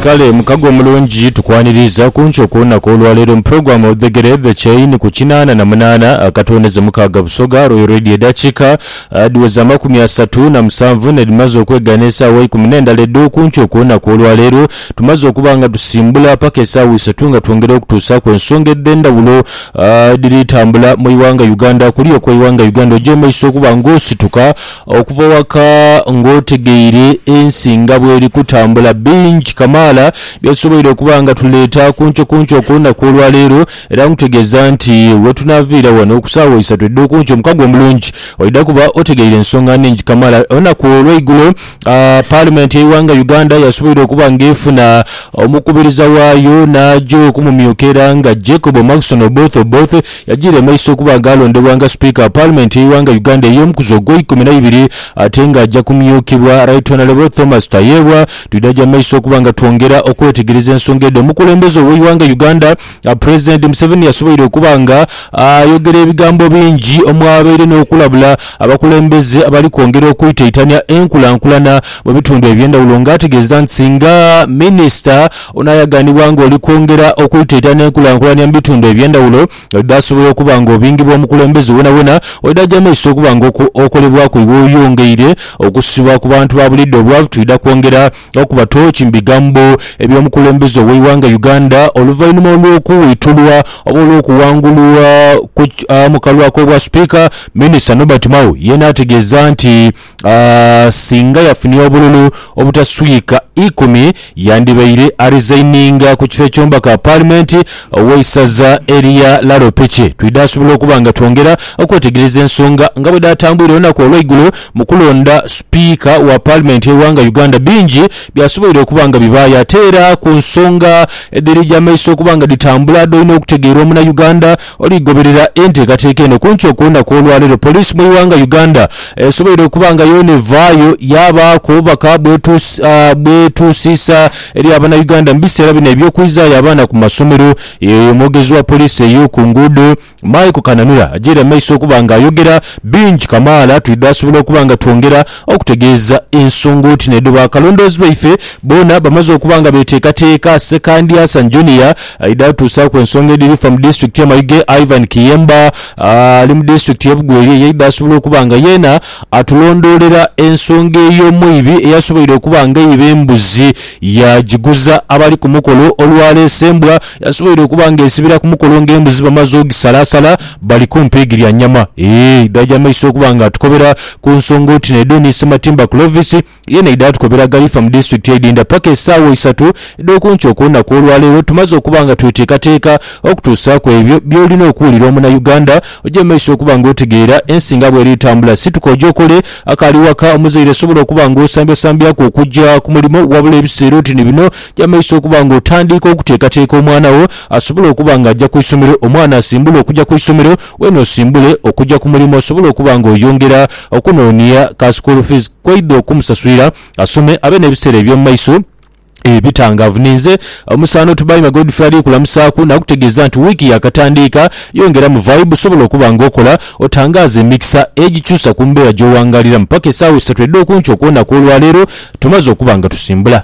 Kale mukago omulungi tukwaniriiza kunkyo kulunaku olwaleero muprogram odhegere the chain ku kinaana na munaana akatwendeze mukaaga Busoga Royal Radio edakika dhiweze amakumi asatu na musanvu nedhimaze okwegana esaawa eikumi nendala edho kunkyo kulunaku olwaleero tumaze okuba nga tusimbula paka esaawa isatu nga twongera okutuusaaku ensonga edhendawulo edhiri tambula mu iwanga Uganda kuli okweiwanga Uganda oja emaiso okuba nga osituka Okuva waka ng'otegeire ensi nga bw'eri kutambula, bingi kamaala bye tusoboire okuba nga tuleeta kuncokunco ku lunaku olwaleero. Era nkutegeeza nti we tunaaviira wano ku saawa isatu edh'okunkyo, omukago omulungi oidha kuba otegeire ensonga nnhingi kamaala. Olunaku olweigulo Paalimenti y'eighanga Uganda yasoboire okuba ng'efuna omukubiriza waayo n'aja okumumyuka era nga Jacob Maxon Oboth Oboth, Yajiire mu iso okuba nga alondebwa nga Sipiika wa Paalimenti y'eighanga Uganda ey'omukuzi ogweikumi na ibiri ate nga aja kumyuukibwa Right Honourable Thomas Tayebwa. Twidha gya maiso okuba nga twongera okwetegereza ensonga edho. Omukulembeze ow'eighanga Uganda Pulezidenti Museveni yasoboire okuba nga ayogera ebigambo bingi omwabaire n'okulabula abakulembeze abali kwongera okwitaitania enkulankulana mu bitundu eby'endhawulo nga ategeeza nti singa Minisita Onaayaganibwa ng'oli kwongera okwitaita n'enkulankulania mu bitundu eby'endhawulo oidha asobola okuba ng'obingi bw'omukulembeze wonawona oidha aja maiso okuba ng'okolebwaku iwe oyongeire okusibwa ku bantu ba buliidho obwavu twidha kwongera okuba tooki mu bigambo eby'omukulembeze ow'eighanga Uganda oluvainhuma olw'okuwitulwa oba olw'okuwangulwa mu kalwak'obwa Sipiika Minisita Nobert Mao yeena ategeeza nti Singa yafunha obululu obutaswika ikumi, yandibaire arizaininga ku kifo eky'omubaka Paalimenti ow'eisaza erya Laro Piki. Twidhaasobola okuba nga twongera okwetegereza ensonga nga bwe dhaatambwire olunaku olw'eigulo mu kulonda Sipiika wa Paalimenti y'eighanga Uganda. Bingi byasoboire okuba nga bibaayo ate era ku nsonga edhiri gya maiso okuba nga dhitambula, dhoine okutegeera omunauganda. Oligoberera enteekateeka eno kuntu okwolunaku olwaleero poliisi mu ighanga Uganda esoboire okuba nga yoona evaayo yaabaaku obubaka bwetuusiisa eri abanauganda mu biseera bino eby'okwizaayo abaana ku masomero. Yeyo omwogezi wa poliisi ey'oku nguudo Michael Kananura ajeire amaiso okuba nga ayogera bingi kamaala twidhe asobola okuba nga twongera Okutegeeza ensonga oti n'edho baakalondoozi baife boona bamaze okuba nga beeteekateeka, Ssekandi Hassan Junior aidha atuusaaku ensonga edhiri fa mu disitulikiti y'e Mayuge, Ivan Kiyemba ali mu disitulikiti y'e Bugweri yaidha asobola okuba nga yeena atulondoolera ensonga ey'omwibi eyasoboire okuba nga eiba embuzi yaagiguza abali ku mukolo olwaleese embwa Yasoboire okuba nga esibira ku mukolo nga embuzi bamaze ogisalaasala bali ku mpiigi lya nyama. Ee, idhaja amaiso okuba nga atukobera ku nsonga oti n'edho ni Ssematimba Clovis yeena aidha atukobera ghalifa mu disitulikiti edhindha paka esaawa isatu edh'okunkyo okw'olunaku olwaleero tumaze okuba nga tweteekateeka okutuusaaku ebyo by'olina okuwulira omunauganda oje mu maiso okuba nga otegeera ensi nga bw'eri etambula. Situka oje okole akaali waka. Omuzaire sobola okuba nga osambyasambyaku okujja ku mulimo wabula ebiseera oti ni bino, Jamaiso okuba nga otandiika okuteekateeka omwana wo asobole okuba nga aja ku isomero. Omwana asimbule okuja ku isomero, weene osimbule okuja ku mulimo osobole okuba nga oyongera okunoonia ka school fees k'oidha okumusasulira asome abe n'ebiseera eby'omu maiso ebitangaavu. Ninze Omusaano Tubaime Godfrey ali kulamusaaku nakutegeeza nti wiiki yaakatandiika, yongeramu vibe sobola okuba nga okola otangaaze emikisa egikyusa ku mbeera gy'owangaaliramu. Paka esaawa isatu edh'okunkyo okw'onaku olwaleero tumaze okuba nga tusimbula.